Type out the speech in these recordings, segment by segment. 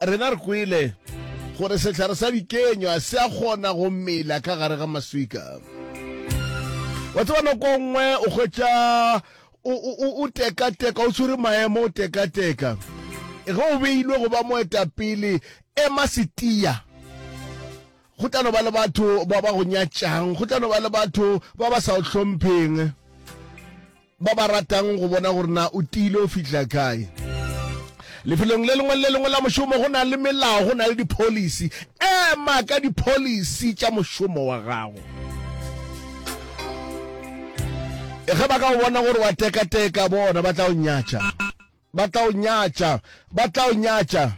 Rena re kwele gore sehlare sa dikenywa se a kgona go mela ka gare ga maswika. Wa tseba nako nngwe o hwetša o tekateka, o tshwere maemo, o tekateka. Ge o beilwe go ba moetapele, ema setia. Go tla no ba le batho ba ba go nyatšang, go tla no ba le batho ba ba sa o hlompheng. ba ba ratang go bona gore na o tiile o fitlha kae lefelong le lengwe le le lengwe la mošomo go na le melao go na le di-policy ema ka di-policy tša mošomo wa gago e ge ba ka o bona gore wa tekateka bona ba tla o nyatša Ba tla o nyatša, ba tla o nyatša.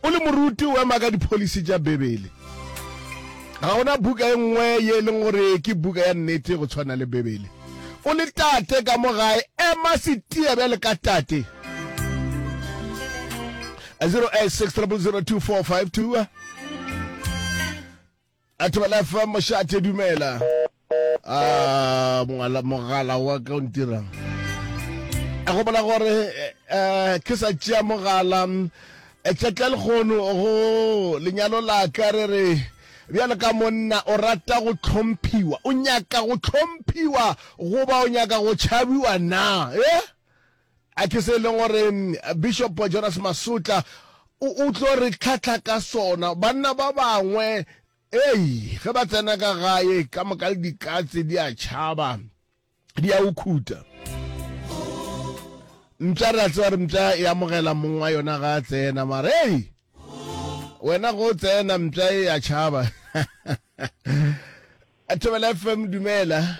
O le moruti o ema ka dipholisi tša Bibele. Ga gona buka e nngwe ye e leng gore ke buka ya nnete go tshwana le Bibele. O le tate ka mo gae, ema setia bjale ka tate. 086 0002452 Atbelef Mošate dumela. A mongala mogala wa ka o ntirang. A go bola gore eh, ke sa tšea mogala eh, tšatla lekgono go lenyalo la ka re re bjalo ka monna o rata go tlhomphiwa o nyaka go tlhomphiwa goba o nyaka go tšhabiwa na eh? A Ke se e leng gore Bishop Jonas Masutla o, o tlo re tlhahla ka sona. Banna ba bangwe, ei, ge ba tsena ka gae, ka moka le dikatse di a tšhaba, di a ukhuta. Mpša re a tseba re mpša e amogela mong wa yona ga a tsena, mare ei, wena go tsena mpša e a tšhaba. Thobela FM, dumela.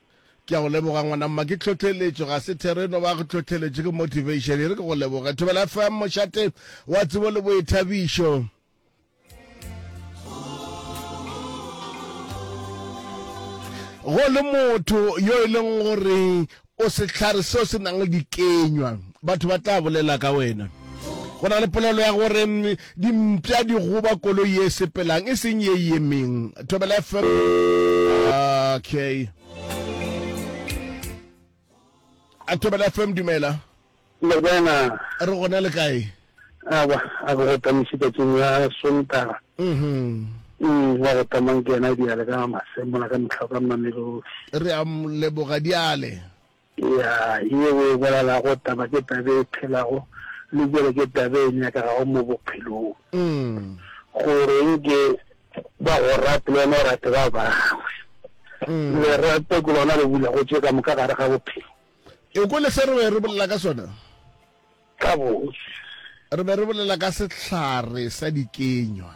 Ke a go leboga ngwana mma ke tlhohleletšo ga se thero e no ba go tlhohleletšo ke motivation e re ke go leboge Thobela FM mošate wa tsebo le boithabišo go le motho yo e leng gore o sehlare seo se nang le dikenywa batho ba tla bolela ka wena go na le polelo ya gore mm, Dimpša di goba koloi ye sepelang e seng ye yemeng. Thobela FM. Okay. A Thobela FM dumela. Morena. Re gona le kae? Aba a go tamishi ka tseng ya sontara. Mhm. Mm wa go tamang ke yena diale ka masemo la ka mtlha ka mamelodi. Re a leboga diale. Eya, ye o e bolelago taba ke taba e phelago, le bjale ke taba e nyakegago mo bophelong. Go reng ke ba go rate le wena o rate ba bangwe? Lerato ke lona le bulago tše ka moka gare ga bophelo. E kwele se re be re bolela ka sona? Gabotse. Re be re bolela ka sehlare sa dikenywa.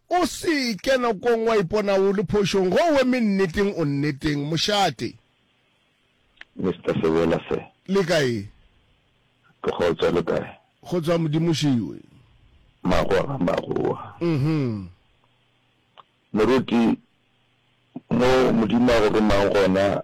O se ke nakong wa ipona o le phošong ge o eme nneteng o nneteng, mošate. Mister Sebela sir. Le kae? Ke kgotsa, le kae? Go tswa Modimo šiwe. Magoa ga magoa. Uhum. Moruti, mo Modimo a go romang gona,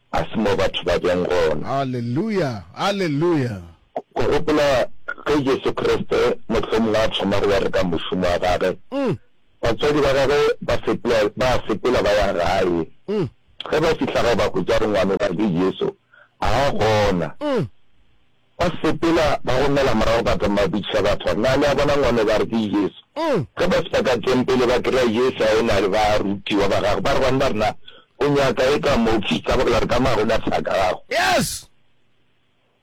Ga se mo batho ba bjang gona. Aleluya! Aleluya! Go gopola ge Jesu Kriste mohlomongwe a thoma go bereka mošomo wa Gage, batswadi ba Gagwe ba sepela, ba a sepela ba ya gae. Ge ba fihla gae, ba hwetša gore ngwanogwadi Jesu ga a gona. Ba sepela ba gomela morago ba thoma ba botšiša batho, Na le a bona ngwana yo? Ba re, Ke Jesu. Ge ba fihla ka Tempele, ba kry-a Jesu a ena le barutiwa ba gagwe. Ba re, Banna, rena o nyaka e ka mo fihla ba bolela re ka mago na thaka gago? Yes!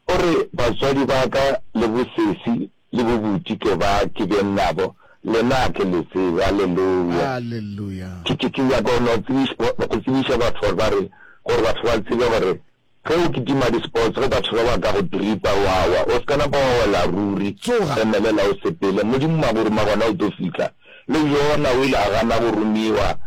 O re, Batswadi ba ka le bosesi le bobuti ke ba ke beng nabo, lena a ke le tsebe. Alleluia! Alleluia! Ke, ke, ke nyaka go no tsebiša, go tsebiša batho gore ba re, gore batho ba tsebe gore Ge o kitima di-sports ge batho ba ba ka go tripa wa wa, o se ka napa wa wela ruri. Tsoga! Emelela o sepele, Modimo wa go ruma gona o tlo fihla. Le Jona o ile a gana go rumiwa.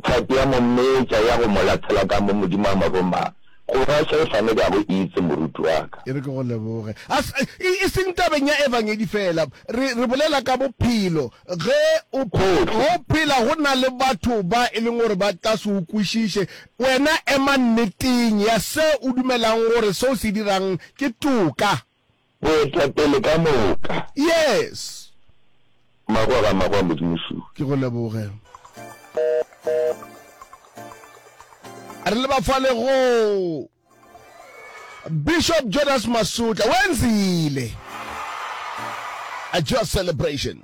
Tlhapi ya mo metša ya go mo lathela ka mo Modimo a mo ruma. Go ba Saefane ke a go itse, moruti wa ka. E re ke go leboge. A se, e, e seng tabeng ya Evangedi feela. Re, re bolela ka bophelo. Ge o, Gohle. go phela go na le batho ba e leng gore ba ka se o kwešiše, Wena ema nneteng ya se o dumelang gore se o se dirang ke toka. Boetapele ka moka. Yes. Magwa ga magwa Modimo Shu. Ke go leboge. Re leba fale go Bishop Jonas Masutla. Wenzile. A joy celebration.